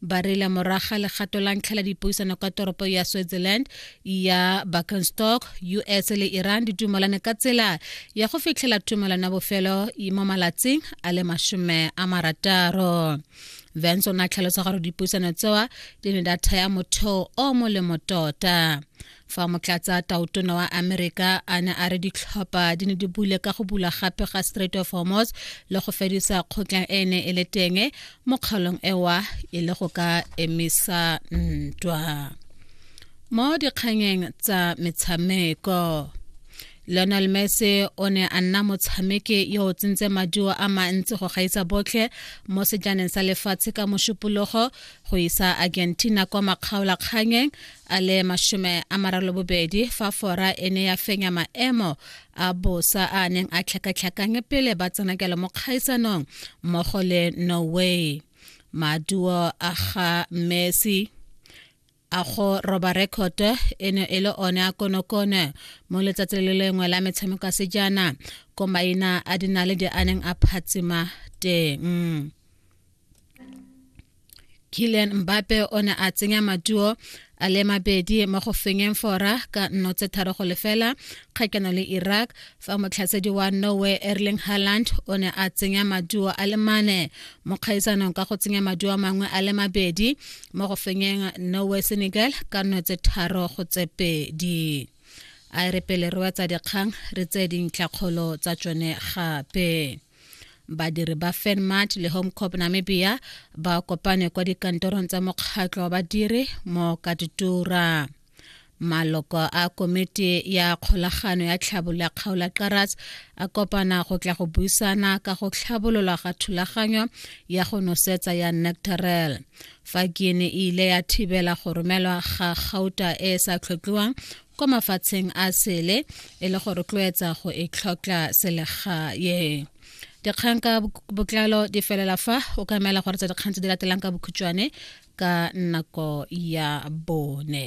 ba rela moraga legato la ntlha la dipuisano ka toropo ya switzerland ya buckenstock us le iran di dumalane ka tsela ya go fitlhela tumelano ya bofelo mo malatsing a le masome a marataro vance o ne a tlhalosa gore dipuisano tsewa di ne data ya motheo o molemo tota fa motlatsa tautona wa amerika a ne a re ditlhopha di ne di bule ka go bula gape ga strait of hormos le go fedisa kgotlang e ne e le teng mo kgaolong ewa e le go ka emisa ntwa mo dikganyeng tsa metshameko Lionel Messi o ne a nna motshameki yo o tsentse maduo a mantsi go gaisa botlhe mo sejaneng sa lefatshe ka mošupologo go isa Argentina kwa makgaolakganyeng a le masome a maralobobedi fa fora e ne ya fenya maemo a bosa a neng a tlhakatlhakanye pele ba tsenakelo mo kgaisanong mmogo le norway maduo a ga messi a go roba rekoto e ne e le one a konokone mo letsatsi le lengwe la metshameko a sejana ko maina a dinaledi a neng a phatsima teng Kylian Mbappe o ne a tsenya matuo a le mabedi mo go fenyeng fora ka nno tse tharo go lefela kgakeno le Iraq fa motlhasedi wa Norway Erling Haaland o ne a tsenya maduo a le mane mo kgaisanong ka go tsenya maduo mangwe a le mabedi mo go fenyeng Norway Senegal ka nno tse tharo go tse pedi a re pele re wetsa dikgang re tse dintlhakgolo tsa tsone gape badiri ba fenmart le home corp namibia ba kopane kwa dikantorong tsa mokgatlho wa badiri mo katitura maloko a komiti ya kgolagano ya tlhabolo ya kgaola karas a kopana go tla go buisana ka go tlhabololwa ga thulaganyo ya go nosetsa ya nectarel fa guine e ile ya thibela go romelwa ga gauta e e sa tlhotlhiwang kwa mafatsheng a sele e le go rotloetsa go e tlhokla selegae dikgang ka botlalo di felela fa o ka emela gore tsa dikgang tse di latelang ka bokhutšwane ka nako ya bone